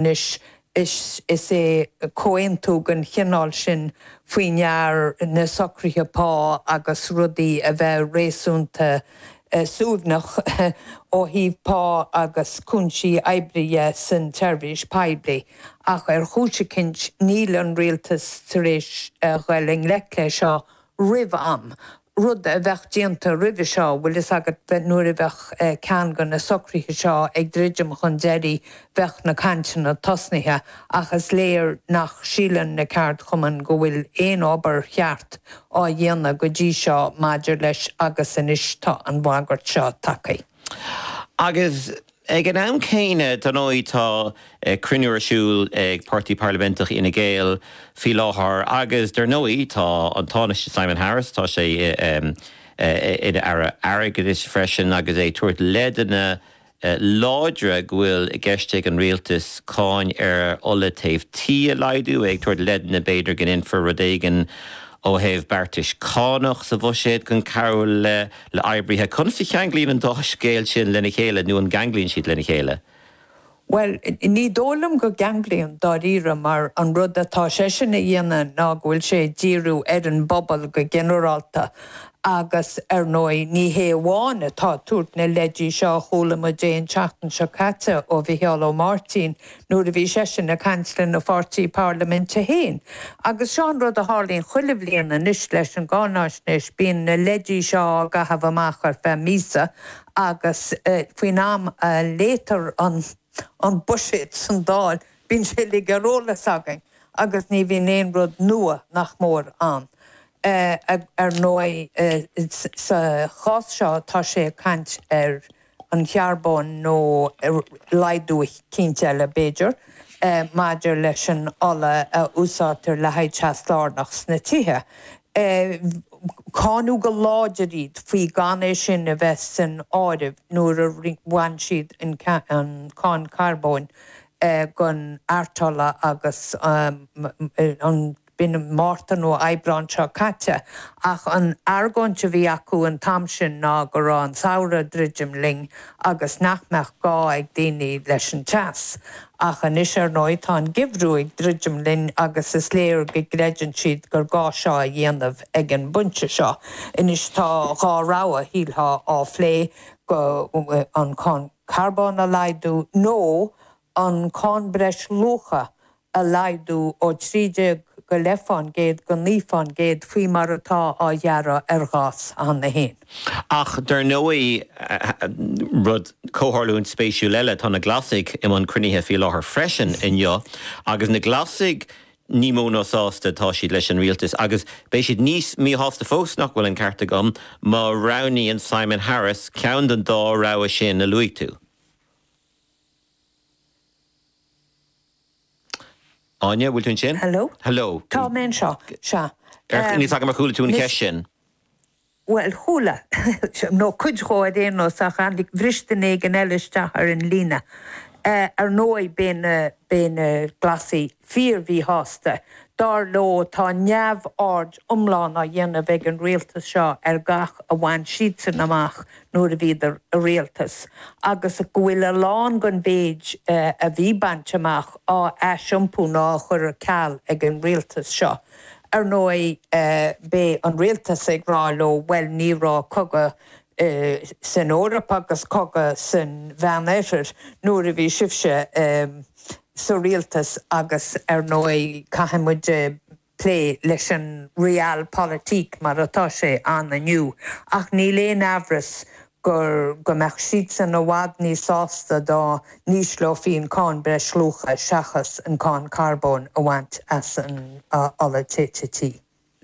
Anois, is é comhaontú den chineál sin faoi ndear na socruithe pá agus rudaí a bheith réasúnta suaimhneach ó thaobh pá agus cúinsí oibre dhe san tseirbhís poiblí, ach ar chúis eicínt níl an Rialtas tar éis a dhul i ngleic leis seo roimh am, rud a bheadh déanta roimhe seo, bhfuil fhios agat, nuair a bheadh ceann de na socruithe seo ag druidim chun deiridh bheadh na cainteanna tosnaithe ach is léir nach síleann na ceardchumainn go bhfuil aon obair cheart á dhéanamh go dtí seo maidir leis agus anois tá an bhagairt seo tagtha agus. Ag an am céanna, dar ndóigh, tá cruinniú ar siúl ag Páirtí Parlaiminteach Fhine Gael faoi láthair agus dar ndóigh tá an Tánaiste Simon Harris, tá sé ina Aire Airgeadais freisin agus é ag tabhairt leideanna láidre go bhfuil i gceist ag an Rialtas cáin ar ola téimh tí a laghdú, é ag tabhairt leideanna b'fhéidir go ndéanfar rud éigin ó thaobh beartais cánach sa bhuiséad chun cabhrú le. le oibrithe, conas a cheanglaíonn an dá scéal sin lena chéile nó an gceanglaíonn siad lena chéile? Bhuel, ní dóigh liom go gceanglaíonn, dáiríre, mar an rud atá seisean a dhéanamh ná go bhfuil sé ag díriú ar an bpobal go ginearálta agus, ar ndóigh, ní hé amháin atá ag tabhairt na leidí seo a chuala muid é an tseachtain seo caite ó Mhicheál Ó Máirtín nuair a bhí seisean ag caint lena pháirtí parlaiminte féin. Agus seo an rud a tharlaíonn chuile bhliain anois leis an gcáinaisnéis, bíonn na leidí seo á gcaitheamh amach ar feadh míosa agus faoin am a léitear an buiséad san Dáil bíonn sé uilig ar eolas againn agus ní bhíonn aon rud nua, nach mór, ann. Ar ndóigh sa gcás seo tá sé ag caint ar an charbóin nó laghdú eicínt eile, b'fhéidir, maidir leis an ola a úsáidtear le haghaidh teas lárnach sna tithe. Cáineadh go láidir iad faoi gan é sin a bheith san áireamh nuair a bhain siad an cáin charbóin den artola agus an. i mí an Mhárta nó Aibreán seo caite, ach an argóint a bhí acu an t-am sin ná go raibh an samhradh ag druidim linn agus nach mbeadh gá ag daoine leis an teas. Ach anois, ar ndóigh, tá an geimhreadh ag druidim linn agus is léir go gcreideann siad gur gá seo a dhéanamh ag an bpointe seo. Anois tá dhá rogha, a shílfeá, á phlé, go, an cáin carbóin a laghdú nó an cáin breisluacha a laghdú ó 13 go leith fán gcéad go 9 fán gcéad faoi mar atá á ghearradh ar ghás. Ach dar ndóigh, rud, comhtharlúint spéisiúil eile, tá na Glasaigh i mbun cruinnithe faoi láthair freisin inniu agus na Glasaigh ní mó ná sásta atá siad leis an rialtas agus beidh siad níos míshásta fós, nach bhfuil an ceart agam, má roghnaíonn Simon Harris ceann den dá rogha sin a luaigh tú. Áine, bhfuil tú ansin? Hello? Hello? Tá mé anseo, sea. Ar, ní fheadar ar chuala tú an cheist sin? Bhuel, chuala, nó cuid de ar aon nós, ach tháinig, bhris duine éigin eile isteach ar an líne. Ar ndóigh, beidh na, beidh na Glasaigh fíor-mhíshásta. Dar leo, tá neamhaird iomlán á dhéanamh ag an rialtas seo ar gach a bhain siadsan amach nuair a bhíodar i rialtas, agus go bhfuil a lán den mhéid a bhí bainte amach á aisiompú nó á chur ar ceal ag an rialtas seo. Ar ndóigh, beidh an rialtas ag rá leo, bhuel, ní raibh cogadh san Eoraip agus cogadh san Mheánoirthear nuair a bhí sibhse sa rialtas agus ar ndóigh, caithfidh muid. plé leis an Realpolitik mar atá sé ann inniu, ach níl aon amhras ach go mbeadh siadsan i bhfad níos sásta dá n-ísleofaí an Cáin Breisluacha seachas an Cáin Carbóin a bhaint as an ola téite tí.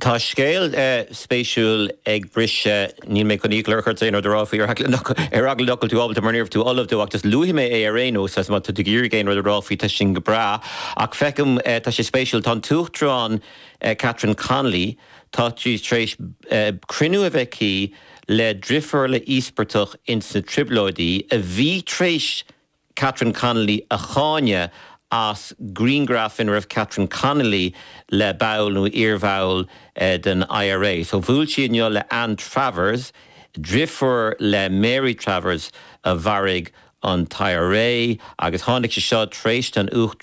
Tá scéal spéisiúil ag briseadh Níl mé chun iachall a chur ort aon rud a rá faoi ar eagla nach ar eagla nach bhfuil tú ábalta mar níorbh tú ullamh dó ach just luafaidh mé é ar aon nós agus má tá tú ag iarraidh aon rud a rá faoi tá sin go breá ach feicim tá sé spéisiúil tá an tUachtarán Catherine Connolly tá sí tar éis cruinniú a bheith aici le driofúr le íospartach ins na Trioblóidí a bhí tar éis Catherine Connolly a cháineadh as grianghraf ina raibh Catherine Connolly le ball nó iarbhall den IRA. So bhuail sí inniu le Anne Travers, driofúr le Mary Travers a mharaigh an t-IRA agus tháinig sé seo tar éis don Uachtarán